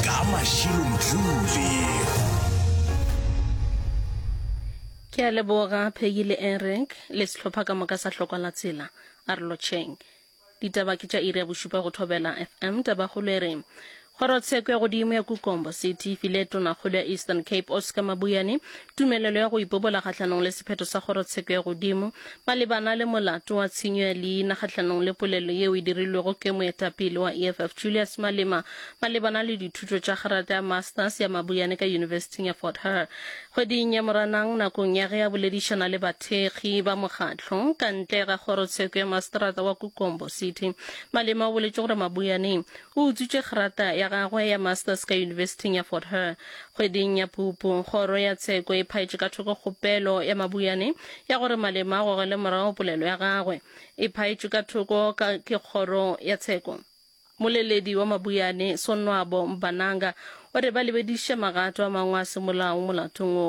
ka mašilomtlule ke a leboga phegi le enrek le sehlopha ka moka sa hlokwa la tsela a re lotšheng ditaba ke tša iri ya bošupa go thobela fm tabakgolo e re kgorotsheko ya godimo ya kukombo city e file tonakgolo ya eastern cape oscar mabuyane tumelelo ya go ipobola kgahlanong le sephetho sa kgorotsheko ya godimo, malebana le molato wa tshenyo ya leina kgahlanong le polelo yeo e dirilwego ke moetapele wa EFF Julius Malema malebana le dithuto tša kgerata ya Masters ya Mabuyane ka Yunibesithing ya Fort Hare kgweding ya Moranang nakong ya ge a boledišana le bathekgi ba mokgatlo ka ntle ga kgorotsheko ya masterata wa Kukombo City. Malema o boletše gore Mabuyaneng o utswitše kgerata ya gagwe ya Masters ka Yunibesithing ya Fort Hare Kgweding ya Phupu, Kgoro ya Tsheko e phaetše ka thoko kgopelo ya Mabuyane ya gore Malema a gogele morago polelo ya gagwe. E phaetšwe ka thoko ka ke Kgoro ya Tsheko. Moleledi wa Mabuyane, Sonwabo Mbananga, o re ba lebediše magato a mangwe a semolao molatong wo.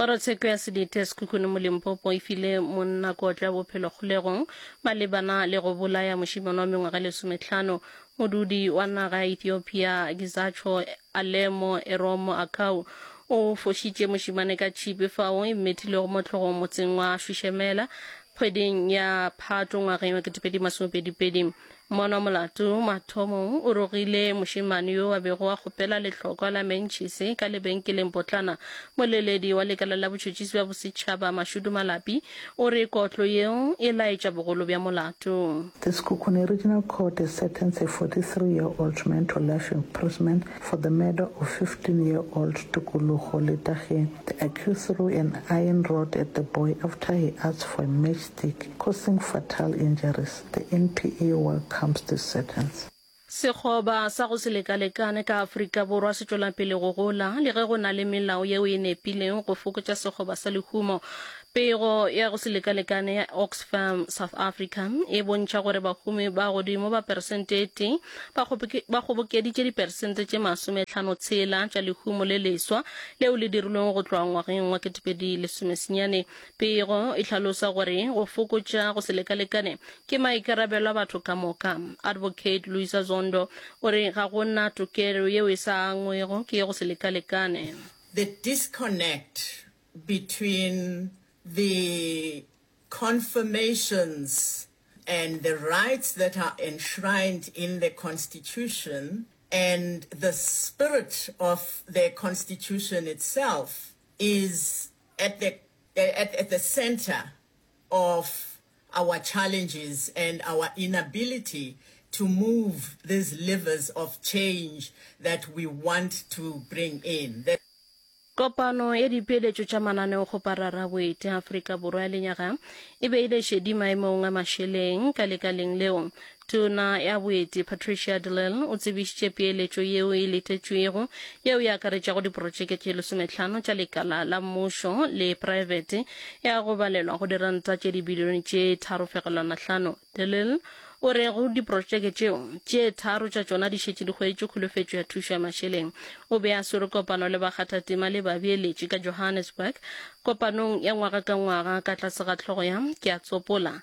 Kgorotsheko ya Sedite Sekhukhune mo Limpopo e file monna kotlo ya bophelo kgolegong malebana le go bolaya mošemane wa mengwaga e lesometlhano. Modudi wa naga ya Ethiopia Gizacho Alemo Eromo Akau o fošitše mošemane ka tšhipi fao e mmethilego mo tlhogong motseng wa Shwishemela kgweding ya Phatwe ngwageng wa 2022. Mona molato mathomong o rogile mošemane yo a bego a kgopela lehlokwa la mentšhise ka lebenkeleng potlana. Moleledi wa lekala la botšhotšhisi bja bosetšhaba Mashudu Malapi o re kotlo yeo e laetša bogolo bja molato. The Sekhukhune Regional Court has sentenced a 43 year old man to life imprisonment for the murder of 15 year old Tukulugo Letagie. The accused threw an iron rod at the boy after he asked for a matchstick, causing fatal injuries. The NPA welcomes this sentence. Sekgoba sa go se lekalekane ka Afrika Borwa se tšwela pele go gola le ge go na le melao yeo e nepilego go fokotša sekgoba sa lehumo. Pego ya go se lekalekane ya Oxfam South Africa e bontšha gore bahumi ba godimo ba peresente e tee ba kgobokeditše diperesente tše masometlhano tshela tša lehumo le leswa leo le dirilwego go tloga ngwageng wa 2010. Pego e hlalosa gore go fokotša go se lekalekane ke maikarabelo a batho ka moka. Advocate Luisa Zondo o re ga go na tokelo yeo e sa angwego ke go se lekalekane. The disconnect between the confirmations and the rights that are enshrined in the Constitution and the spirit of the Constitution itself is at the at at the centre of our challenges and our inability to move these levers of change that we want to bring in. The Kopano ya dipeeletšo tša mananeo go Pararaboete, Afrika Borwa ya lenyaga e beile šedi maemong a mašeleng ka lekaleng leo. Tona ya Boeti Patricia de Lille o tsebišitše peeletšo yeo e letetšwego yeo e akaretšago diprotšeke tše lesometlhano tša lekala la mmušo le praebete ya go balelwa go diranta tše dibilione tše tharofegelwanahlano. De Lille o re go diprotšeke tšeo, tše tharo tša tšona di šetše di hweditše kholofetšo ya thušo ya mašeleng. O be a swere kopano le bakgathatema le babeeletši ka Johannesburg kopanong ya ngwaga ka ngwaga ka tlase ga hlogo ya Ke a Tsopola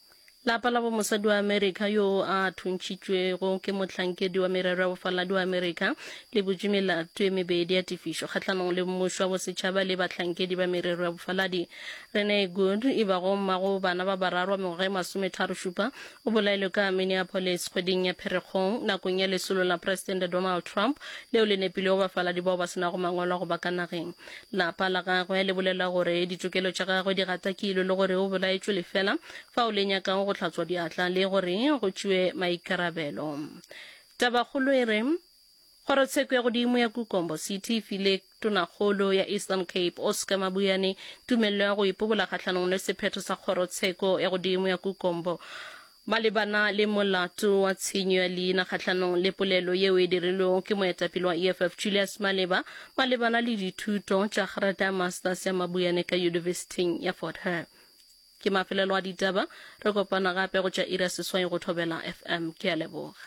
Lapa la bomosadi wa Amerika yoo a thuntšitšwego ke mohlankedi wa merero ya bofaladi wa Amerika le butše melato e mebedi ya tefišo kgahlanong le mmušo wa bosetšhaba le bahlankedi ba merero ya bofaladi. Renee Good, e bago mma go bana ba bararo wa mengwaga e masometharo-šupa, o bolailwe ka Minneapolis kgweding ya Pherekgong nakong ya lesolo la Presidente Donald Trump leo le nepilego bafaladi bao ba se nago mangwalo a go ba ka nageng. Lapa la gagwe le bolela gore ditokelo tša gagwe di gatakilwe le gore o bolaetšwe lefela fa o le nyakago go hlatswa diatla le gore go tšewe maikarabelo. Tabakgolo e re Kgorotsheko ya godimo ya Kukombo City e file Tonakgolo ya Eastern Cape Oscar Mabuyane tumello ya go ipobola kgahlanong le sephetho sa Kgorotsheko ya godimo ya Kukombo Malebana le molato wa tshenyo ya leina kgahlanong le polelo yeo e dirilwego ke moetapele wa EFF Julius Maleba malebana le dithuto tša Grata ya Masters ya Mabuyane ka Yunibesithing ya Fort Hare, ke mafelelo a ditaba. Re kopana gape go tša iri ya seswai go Thobela FM. Ke a leboga.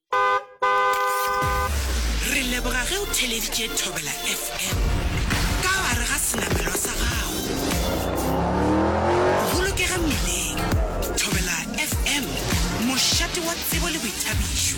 Re leboga ge o theleditše Thobela FM ka gare ga senamelwa sa gago. Bolokega mmileng. Thobela FM, mošate wa tsebo le boithabišo.